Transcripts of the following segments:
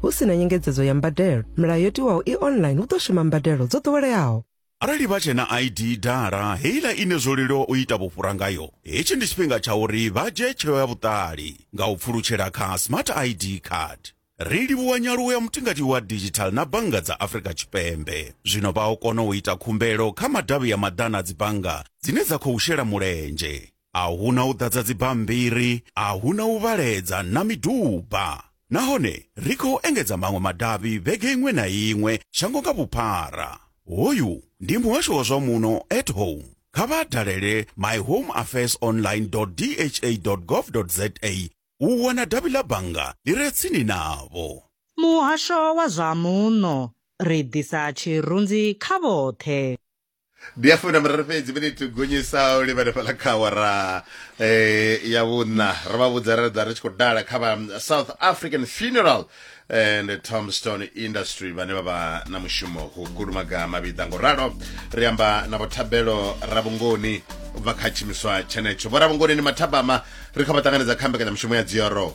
hu si na nyengedzedzo ya mbadelo milayo yo tiwaho i online hu ḓo shuma mbadelo dzo ḓoweleaho arali vha tshe na id dala heiḽa ine zwo leluwa u ita vhufhura ngayo hetshi ndi tshifhinga tsha uri vha dzhie tsheo ya vhuṱali nga u pfulutshela kha smart id card ri livhuwa nyaluwo ya mutingati wa digital na bannga dza afrika tshipembe zwino vha o kona u ita khumbelo kha madavhi ya maḓana a dzibannga dzine dza khou shela mulenzhe a hu na u ḓadza dzibammbiri, a hu na u vhaledza na miduba. Nahone ri khou engedza maṅwe madavhi vhege iṅwe na iṅwe shango nga vhuphara. Hoyu ndi muhasho wa zwa muno at home. Kha vha dalele myhomeaffairsonline.dha.gov.za u wana davhi ḽa bannga ḽi re tsini navho. Muhasho wa zwa muno, ri ḓisa tshirunzi kha vhoṱhe. ndi ya fumi na miraru fhedzi miniti gonyisa u livhane fhala kha awara eh, ya vhuṋa ro vha vhudza ra ḓa ri tshi khou dala kha vha um, south african funeral and tombstone industry vhane vha vha na mushumo hu kulumaga mavhiḓa ngo ralo ri amba na vhothabelo ravhungoni u bva kha tshimiswa tshenetsho vho ravhungoni ni mathabama ri kha vha ṱanganedza kha mbekanyamushumo ya dzioro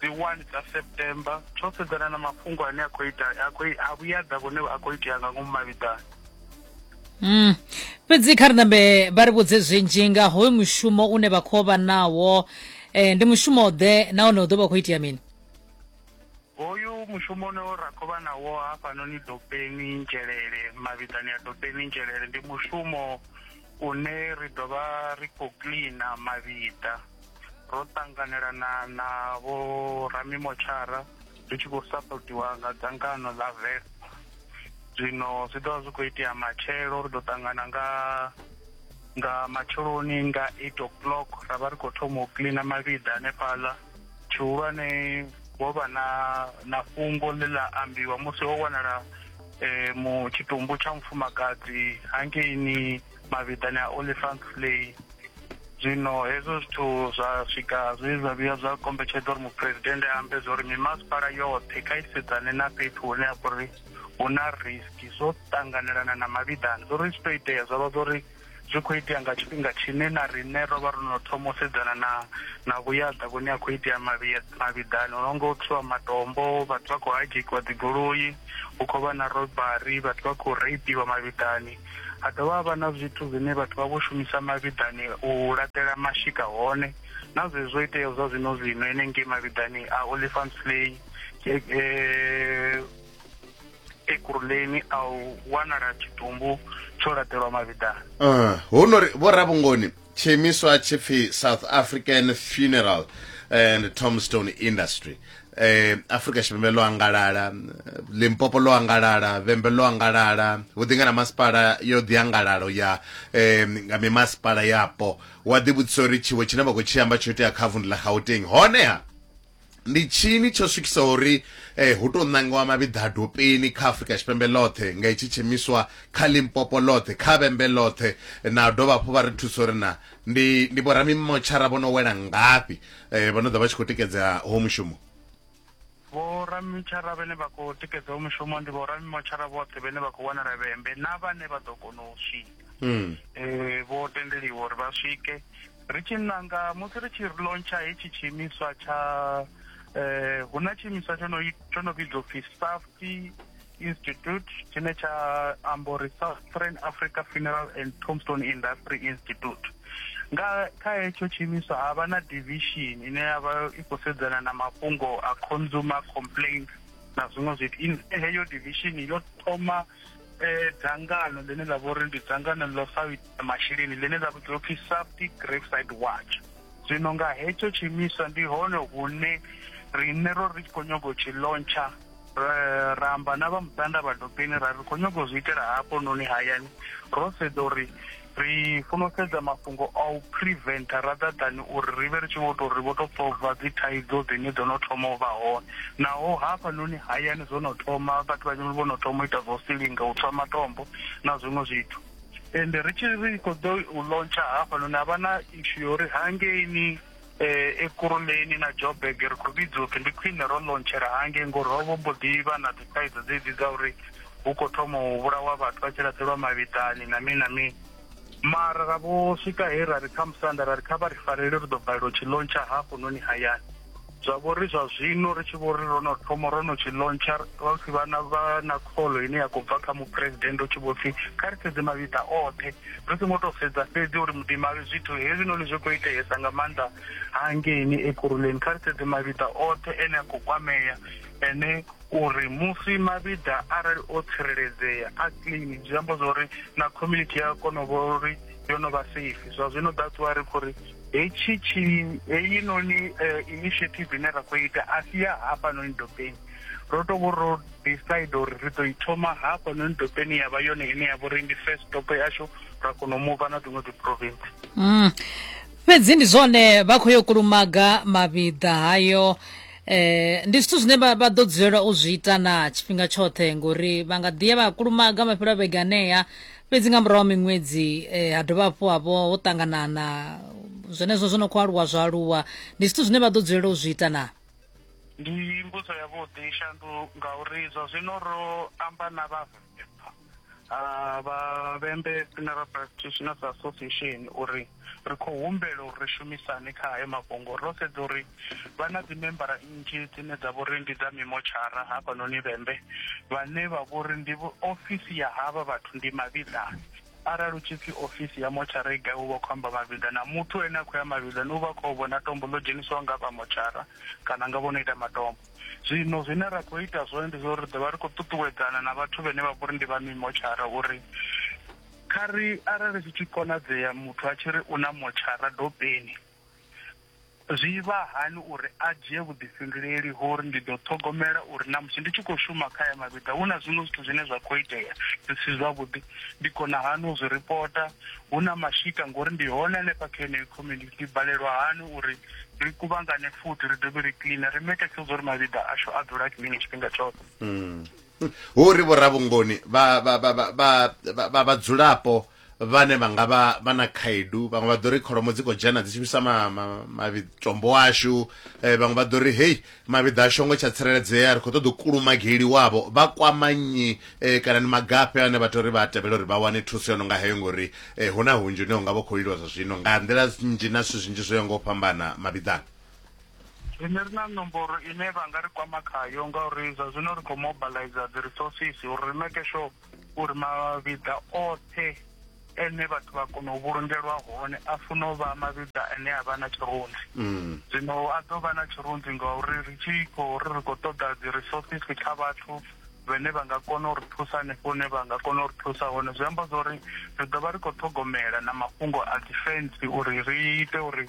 dzi 1 dza september tsho sedzana na mafhungo ane a khou ita a khou a vhuyadza vhone a khou itea nga ngomu mavhiḓani Mm. fhedzi kha ri nambe vha ri vhudze zwinzhi nga hoyu mushumo une vha khou vha nawo eh, ndi mushumo ḓe nahone u ḓo vha khou itea mini hoyu mushumo une ra khou vha nawo hafhanoni dopeni nzhelele mavhiḓani ya dopeni nzhelele ndi mushumo une ri ḓo vha ri khou cleana mavhiḓa ro ṱanganelana na vho ramimotshara ri tshi khou sapotiwa nga dzangano ḽa vel zwino zwi ḓovha zwi khou itea matshelo ri ḓo ṱangana nga nga matsheloni nga eight o'clock ra vha ri khou thoma u cleana mavhiḓa hanefhaḽa tshihulwane ho vha na na fhungo ḽe ḽa ambiwa musi ho wanala um tshitumbu tsha mufumakadzi hangeini mavhiḓani a olifant flay zwino hezwo zwithu zwa swika zwe zwa vhuya zwa kombetshedza uri muphuresidennde a ambe zwa uri mimasipala yoṱhe kha isedzane na fhethu hune ha vha uri hu na risk zwo ṱanganelana na mavhiḓani zwo ri zwi to itea zwa vha zwa uri zwi khou itea nga tshifhinga tshine na riṋe ro vha ro no thoma u sedzana na na vhuyaḓa vhune a khou itea mavhiḓani hu no nga u thwiwa matombo vhathu vha khou hajekiwa dzigoloi hu khou vha na robari vhathu vha khou reipiwa mavhiḓani ha dovha havha na zwithu zwine vhathu vha vho shumisa mavhiḓani u laṱela mashika hone na zwezwo iteaho zwa zwino zwino enengei mavhiḓani a olifant slay eh, ekuruleni a u wanala tshitumbu tsho laṱelwa mavhiḓani eh, hu no ri vho rabungoni tshiimiswa tshi pfi south african funeral and tombstone industry eh Afrika Tshipembe ḽo angalala Limpopo ḽo angalala Vhembe ḽo angalala vhuḓinga na masipala yo ḓi angalalo ya eh nga mimasipala yapo wa ḓi vhudzisa uri tshiwo tshine vha khou tshi amba tsho itea kha vundu ḽa Gauteng hone ha ndi tshini tsho swikisa uri eh, hu tou ṋangiwa mavhiḓa a dopeni kha afurika tshipembe ḽoṱhe nga itshi tshimiswa kha limpopo ḽoṱhe kha vhembe ḽoṱhe na dovha hafhu vha ri thusa uri na ndi ndi vhoramimotshara vho no wela ngafhi eh, vho no ḓa vha tshi khou tikedza ho mushumo vhoramimotshara vhane vha khou tikedza ho mushumo ndi vhoramimotshara vhoṱhe vhane vha khou wanala vhembe na vhane vha ḓo kona u swika mm. eh, vho tendeliwa uri vha swike ri tshi nanga musi ri tshi launcha hetshi tshiimiswa tsha eh hu na tshiimiswa tsho no tsho no vhidzwa upfi safety institute tshine tsha amba uri southern africa funeral and tombstone industry institute nga kha hetsho tshiimiswa ha vha na division ine ya vha i khou sedzana na mafhungo a consumer complaints na zwiṅwe zwithu heyo division yo thoma eh dzangano ḽine ḽa vhori ndi dzangano ḽo sa ita masheleni ḽine ḽa vhidzwa upfhi safety graveside watch zwino nga hetsho tshiimiswa ndi hone hune riṋe ro ri tshi khou nyaga u tshi lontsha eh, ra amba na vha muṱanda vha dobeni ra ri khou nyaga u zwi itela hafho noni hayani ro sedza uri ri funa u sedza mafhungo a u preventa rather than uri ri vhe ri tshi vho tou ri vho tou solva dzi thaidzo dzine dzo no thoma u vha hone naho hafhanoni hayani zwo no thoma vhathu vhanzhi vho no thoma u ita zwo silinga u tswa matombo na zwiṅwe zwithu ende ri tshi ri khou ḓo u lontsha hafhanoni ha vha na ishu ya uri hangeini Eh, Ekurhuleni na Joburg ri khou vhidza upfi ndi khwine ro ḽontshela hangei ngori ho vho mbo ḓi vha na dzithaidzo dzedzi dza uri hu khou thoma u vhulawa vhathu vha tshi laṱelwa mavhiḓani na mini na mini mara ra vho swika he ra ri kha musanda ra ri kha vha ri farele ri ḓo balelwa u tshi lontsha hafhunoni hayani zwa vho ri zwa zwino ri tshi vho ri ro no thoma ro no tshi lontsha vha pfi vha na vha na kholo ine ya khou bva kha muphuresidennde u tshi vho pfi kha ri sedze mavhiḓa oṱhe Ri songo tou sedza fhedzi uri muḓimali zwithu hezwinoni zwi khou iteesa nga maanḓa hangeini Ekurhuleni, kha ri sedze mavhiḓa oṱhe ene a khou kwamea ene uri musi mavhiḓa arali o tsireledzea a clean zwi amba zwa uri na community ya kona u vhona uri yo no vha safe zwa zwino that's why ri khou ri hetshi tshi heyinoni eh, initiative ine ra khou ita a si ya hafhanoni dobeni ro to vho ro decide uri ri ḓo i thoma hafhanoni dopeni ya vha yone ine ya vha uri ndi first dopo yashu ra kona u muva na dziṅwe dziprovinsi mm. fhedzi ndi zwone vha khou yo kulumaga mavhiḓa hayo eh ndi zwithu zwine vha ḓo dzulela u zwi ita na tshifhinga tshoṱhe ngori vha nga ḓiya vha kulumaga mafhelo a vhege anea fhedzi nga murahu miṅwedzi eh, ha dovha hafhu havho ho ṱanganana zwenezwo zwo no khou aluwa zwa aluwa ndi zwithu zwine vha ḓo dzulela u zwi ita na ndi mbudzo yavhuḓi shandu ngauri zwa zwino ro amba na vha ah, vha vhembe funeral practitioners association uri ri khou humbela uri ri shumisane kha hayo mafhungo ro sedza uri vha na dzimembara nnzhi dzine dza vhori ndi dza mimotshara hafhanoni vhembe vhane vha vhori ndi ofisi ya havha vhathu ndi mavhiḓani Arali hu tshi pfi ofisi ya motshara i gai hu vha hu khou amba mavhiḓa na muthu ane a khou ya mavhiḓani u vha a khou a vhona tombo ḽo dzhenisiwaho nga vha motshara kana nga vho no ita matombo. Zwino zwine ra khou ita zwone ndi zwa uri ri ḓo vha ri khou ṱuṱuwedzana na vhathu vhane vha vha uri ndi vha mimotshara uri kha ri arali zwi tshi konadzea muthu a tshi ri u na motshara dopeni, Zwi vha hani uri a dzhie vhuḓifhinduleli ha uri ndi ḓo ṱhogomela uri na musi ndi tshi khou shuma kha aya mavhiḓa hu na zwiṅwe zwithu zwine zwa khou itea zwi si zwavhuḓi? Ndi kona hani u zwi ripota hu na mashika ngori ndi hone hanefha kha yeneyo community? Ndi balelwa hani uri ri kuvhangane futhi ri dovhe ri cleaner ri make sure uri mavhiḓa ashu a dzula a clean tshifhinga tshoṱhe? Hmm. Hu ri vhoravhungoni vha vhadzulapo vhane vha nga vha vha na khaedu vhaṅwe vha ḓo ri kholomo dzi khou dzhena dzi shumisa matombo ashu eh, vhaṅwe vha ḓo ri hei mavhiḓa ashu ngo tsha tsireledzea ri khou ṱoḓa u kulumageli wavho vha kwama nnyi eh, kana ni magafhe ane vha tou ri vha tevhela uri vha wane thuso yo no nga heyo ngori eh, hu na hunzhi une unga vha khou iliwa zwa zwino nga nḓila nnzhi na zwithu zwinzhi zwo ya nga u fhambana mavhiḓani rine ri na nomboro ine vha nga ri kwama khayo ngauri zwa zwino ri khou mobilizer dzi resources uri ri make sure uri mavhiḓa oṱhe ene vhathu vha kona u vhulungelwa hone a funa u vha mavhiḓa ane a vha na tshirunzi mm. zwino a ḓo vha na tshirunzi ngauri ri tshi khou ri ri khou ṱoḓa dzi resources kha vhathu vhane vha nga kona u ri thusa hanefho hune vha nga kona u ri thusa hone zwi amba zwa uri ri ḓo vha ri khou ṱhogomela na mafhungo a defense uri ri ite uri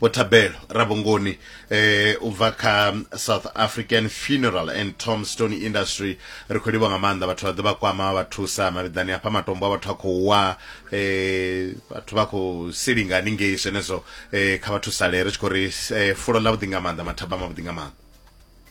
vho thabelo rabongoni eh u bva kha south african funeral and tombstone industry ri khou livha nga maanḓa vhathu vha ḓo vha kwama vha thusa mavhiḓani hafha matombo a vhathu a khou wa eh vhathu vha khou silinga haningei zwenezwo eh kha vha thusale ri tshi khou ri eh, fulo ḽa vhuḓi nga maanḓa mathaba mavhuḓi nga maanḓa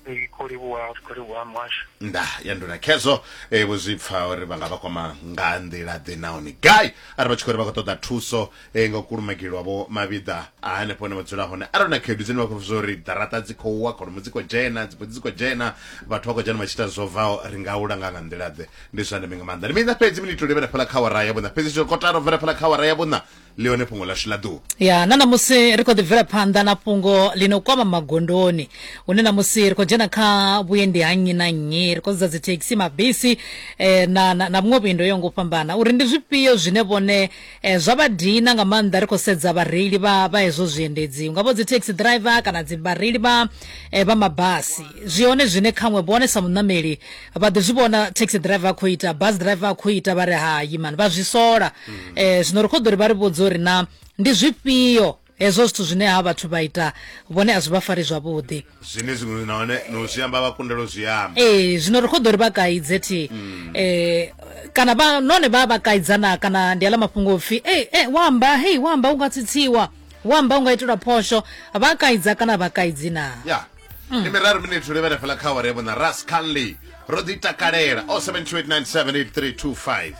Ee, kho livhuwa kho livhuwa muhasho nda ya nduna khezwo e, vho zwi pfa uri vha nga vha kwama nga nḓila ḓe nahone gai arali vha tshi khou ri vha khou ṱoḓa thuso e, nga u kulumagelwa vho mavhiḓa a hanefho hune vha dzula hone arali na khaedu dzine vha khou zwa uri ḓaraṱa dzi khou wa kholomo dzi khou dzhena dzibudzi dzi khou dzhena vhathu vha khou dzhena vha tshi ita zwo bvaho ri nga u langa nga nḓila ḓe ndi zwa ndeme nga maanḓa ndi miṋa fhedzi minito livhela fhala kha wara ya vhuṋa fhedzi zwo kotara u bvela fhala kha wara ya vhuṋa ḽi hone fhungo ḽashu ḽa ḓuvha ya na ṋamusi ri khou ḓi bvela phanḓa na fhungo ḽi no kwama magondoni hune ṋamusi ri khou dzhena kha vhuendi ha nnyi na nnyi ri khou sedza dzithekhisi mabisi eh, na, na, na vhuṅwe vhuendi yo ngo fhambana uri ndi zwifhio zwine vhone eh, zwa vha dina nga maanḓa ri khou sedza vhareili vha, vha hezwo zwiendedzi ungavho dzithekhisi driver kana dzi vhareili vha, eh, vha mabasi zwi hone zwine khaṅwe vhone sa muṋameli vha ḓi zwi vhona taxi driver a khou ita bus driver a khou ita vha ri hayi mani vha zwi sola mm. eh zwino ri khou ḓo ri vha ri vhudza uri na ndi zwifhio hezwo zwithu zwine ha vhathu vha ita vhone a zwi vha fari zwavhuḓi zwine zwiṅwe na hone no zwi amba vha kundelo zwi amba ee zwino ri khou ḓo ri vha kaidze thi mm. eh kana vha none vha vha kaidzana kana ndi aḽa mafhungo upfhi ee eh, eh, wa amba hei wa amba u nga tsitsiwa wa amba u nga itelwa phosho vha kaidza kana vha kaidzi na yeah. ndi miraru miniti ri vhele fela kha awara ya vhona ras canley ro ḓi takalela o 728978325